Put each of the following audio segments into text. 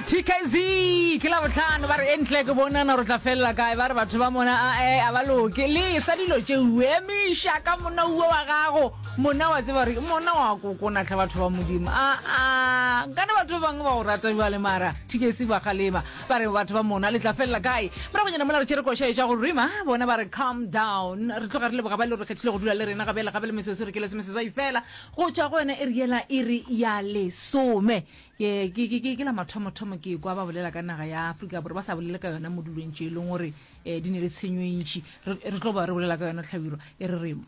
tkz ke la botlhano ba re e ntle ke bonana gore tla felela kae ba re batho ba mona ae a ba loke le sa dilo tše uemiša ka mona uo wa gago mona wa tseba gore mona wa kokonatlha batho ba modimo aa nkane batho ba bangwe ba go rata bja le mara tkc ba galema ba re batho ba mona le tla felela kae moragonyana mona re tšere košaetša go rima bona ba re calm down re tloga re le boga ba le re kgethile go dula le rena gabele gabe le mesotso re ke lesomesetswai fela go tšwa go yona e re yela e re ya lesome ke ke ke ke la mathomothomo ke kwa ba bolela ka naga ya afrika bore ba sa bolele ka yona mo dulong tše e leng gore um di ne le tshenyo e ntšhi re tlo ba re bolela ka yona tlhabiro e re remo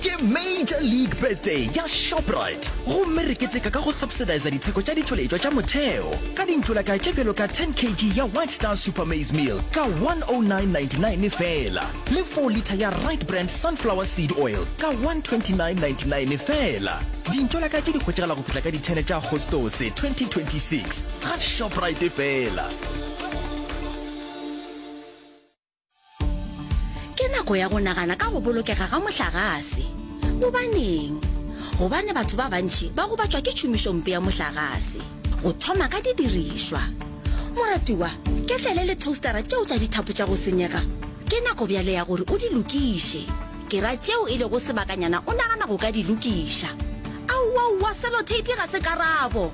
Ke Major League Birthday ya Shoprite gomme re keteka ka go subsidiza ditheko tša ditšweletšwa tša motheo ka dintšolaka tše bjalo ka 10 kg ya White Star Super Maize Meal ka 109.99 feela le 4 litha ya Right Brand Sunflower Seed Oil ka 129.99 feela. Dintšolaka tše di hwetšagala go fihla ka di 10 tša Agostose 2026 ga Shoprite feela. ke nako ya go nagana ka go bolokega ga mohlagase gobaneng gobane batho ba bantšhi ba gobatšwa ke tšhomišompe ya mohlagase go thoma ka didirišwa moratiwa ke tlele le toastera tšeo tša dithapo tša go senyega ke nako bjale ya gore o di lokiše ke ra tšeo e lego sebakanyana o nagana go ka di lokiša aowaowa selotape ga se karabo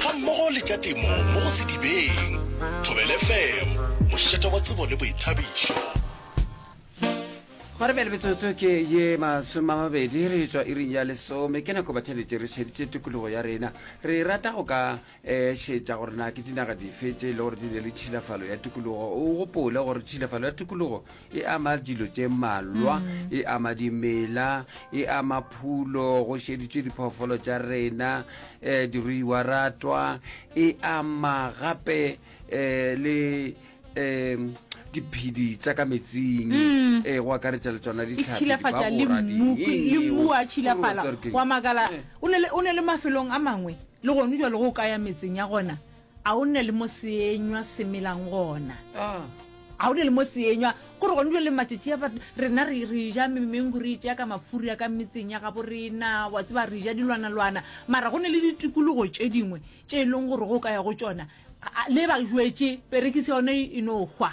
gammogo le tša temo mo go Sedibeng. Thobel FM, mošate wa tsebo le boithabišo. Gwa re bjale metsotso ke ye masome a mabedi re tswa iring ya lesome ke nako bathelete re šeditše tikologo ya rena re rata go ka um šetša gore na ke dinaga dife tše e le gore di ne le tšhilafalo ya tikologo o gopole gore tšhilafalo ya tikologo E ama dilo tše mmalwa, e ama dimela, e ama phulo, go šeditšwe diphoofolo tša rena, um diruiwa ratwa, e ama gape um le um diphedi tsa ka metsing um go akaretša le tsona e tšhilafatša le mmu le mmu wa tšhilafala wa makala o ne le- o ne le mafelong a mangwe le gone jalo go kaya metseng ya gona A o nne le mo seenywa se melang gona. Ah. A o ne le mo seenywa gore gone jwa le matšatši a batho rena re re ja memengu re tšea ka mafuri ya ka metseng ya gabo rena wa tseba re ja dilwanalwana mara go ne le ditikologo tše dingwe tše e leng gore go ka ya go tšona le ba jwetse perekise yone e no hwa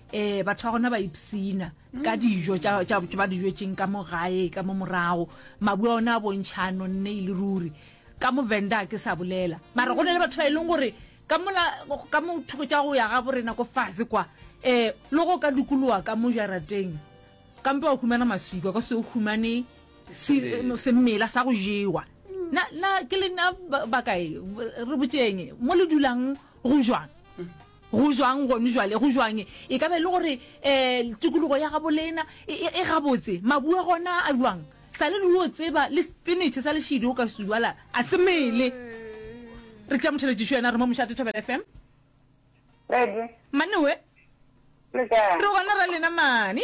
um batho ba gona ba ipsina mm. ka dijo ba di jetseng ka mo gae ka mo morago mabua one a bontšha a nonne e le ruri ka movenda ke sa bolela mara go ne le batho ba e leng gore ka mothoko tša go ya ga borena ko fase kwa um le go ka dukolowa ka mo jarateng kampe wa humana maswikwa ka se o humane semela sa go jewa ke le nna bakae re botseng mo le dulang go jwang mm. go jwang gone jwale go jwang e ka be e le gore um tikologo ya gabolena e, e, e gabotse mabue gona a jwang sa le leo tseba le spinach sa lešidi o ka sujala a se mele re tša motheletšišo yena re mo mošate thobela fm manewe re gona ra lena mane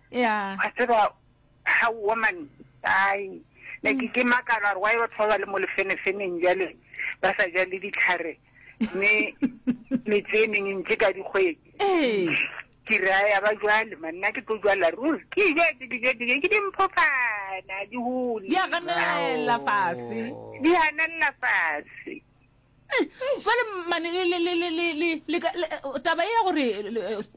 Yeah. Wa tseba, ha woman, ai, ne ke ke makala gore why batho ba ba le mo lefenefeneng bjale ba sa ja le ditlhare mme metse e mengwe ntse ka dikgwedi. Ee. Ke re a ya ba jwale man nna ke tlo jwala ruri ke je ke dijo dijo ke dimphofana di hole. Di a ganelela fase. Di ganelela fase. jale mane taba e ya gore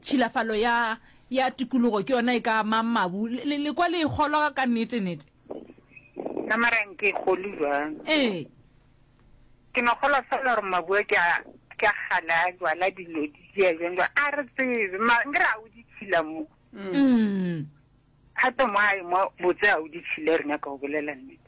tšhilafalo ya ya tikologo ke yona e ka amang mabu le kwa le e kgolwa ka nnete nnete ka marang ke kgole jwang ee ke no kgolwa fela gore mabu a ke a ke a gale a jwala dilo di jea jwang jwang a re tsebe mankere a o di tshila mo mm. gape mo a mo botse a o di tshile rena ka o bolela nnete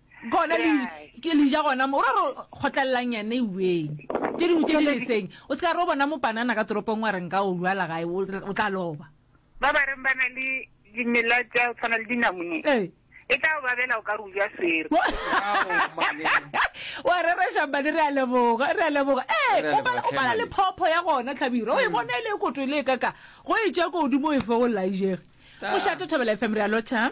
gona le ke le ja gona mo o ra re kgotlelelang yane eweng tše dingwe tše di leseng o se ka re o bona mopanana ka toropong wa reng ka o lwala gae o re- o tla loba ba ba reng ba na le dimela tša go tshwana le dinamune Ee. e tla o babela o ka re o ja swere wa re re šambane re a leboga re a leboga ee Re a o leboga, pala- o pala le Tlhemane. phopho ya gona tlhabiro o e bona e le e koto e le e kaka go e tša ko godimo o e fe go laijege Tla. mošate thobela fm re a lotšha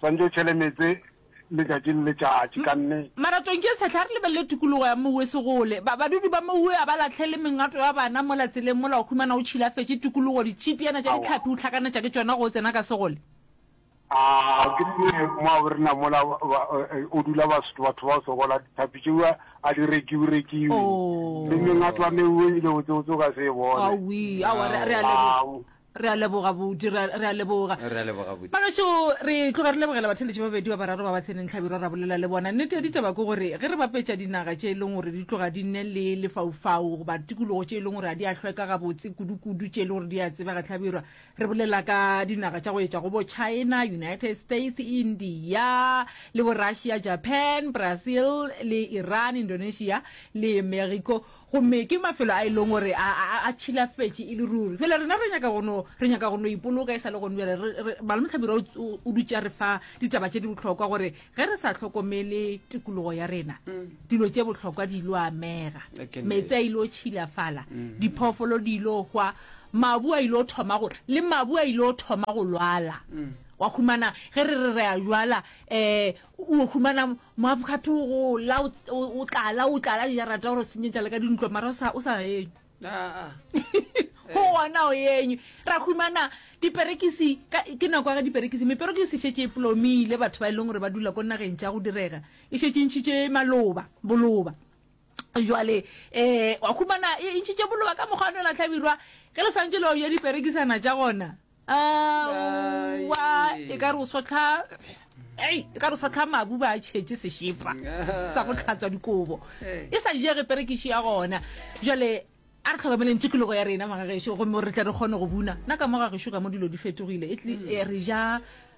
Swantšo o tšhele meetse letšatši le letšatši ka nne. Maratong ke sehla re lebelele tikologo ya Mouwe Segole. Ba badudi ba Mouwe a ba lahlele mengato ya bana mola tseleng mola o humana o tšhilafetše tikologo, ditšhipiana tša dihlapi o hlakanetša ke tšona ge o tsena ka Segole. A ke nne mwa bo rena mola o dula Basotho batho bao sokola, dithapi tšeo a di rekiwe rekiwe le mengato ya Meuwe ebile botsebotse o ka se e bone. Awii, aowa re a leboga. Re a leboga Buti, re a, re a leboga. Re a leboga Buti. Bagašo, re tloga re lebogela batheletši ba babedi ba bararo ba ba tseneng hlabirwa ra bolela le bona. Nnete ya ditaba ke gore ge re bapetša dinaga tše e leng gore di tloga di nne le lefaufau goba tikologo tše e leng gore ga di a hlweka gabotse kudukudu tše e leng gore di a tsebega hlabirwa, re bolela ka dinaga tša go etša go bo China, United States, India le bo Russia, Japan, Brazil le Iran, Indonesia le Mexico. Gomme ke mafelo a e lego gore a, a, a, a tšhilafetše e le ruri. Bjale rena re nyaka go no, re nyaka go no ipoloka e sa le gone bjale. Re, re, Malome Mohlabirwa o, o, o dutše a re fa ditaba tše di bohlokwa gore ge re sa hlokomele tikologo ya rena, dilo tše bohlokwa di ilo amega. Ke nnete. Meetse a ilo tšhilafala, diphoofolo di ilo hwa, mabu a ilo thoma go tla, le mabu a ilo thoma go lwala. Wa humana, ge re re re a jwala, um o humana moavocado go la o tlala o tlala ya rata gore senyetša le ka dintlo mara o sa o sa eng go ona o eng ra humana diperekisi ke nako ya ga diperekisi meperekisi e šetse e plomile batho ba e leng gore ba dula ko nageng tša go direga e šetse e ntšhitše maloba boloba jwale um wa humana e ntšhitše boloba ka mokgwa o ne la tlhabirwa ge le swanetse leo ya diperekisana tša gona aowa e ka re o sotlha ei e ka re o sotlha mabu ba a tšhetše sešepa sa go tlhatswa dikobo e sa jege perekiši ya gona jale a re tlhokomeleng tikologo ya rena magagešo gomme re tle re kgone go buna nna ka mo gagešo ka mo dilo di fetogile e tli e re ja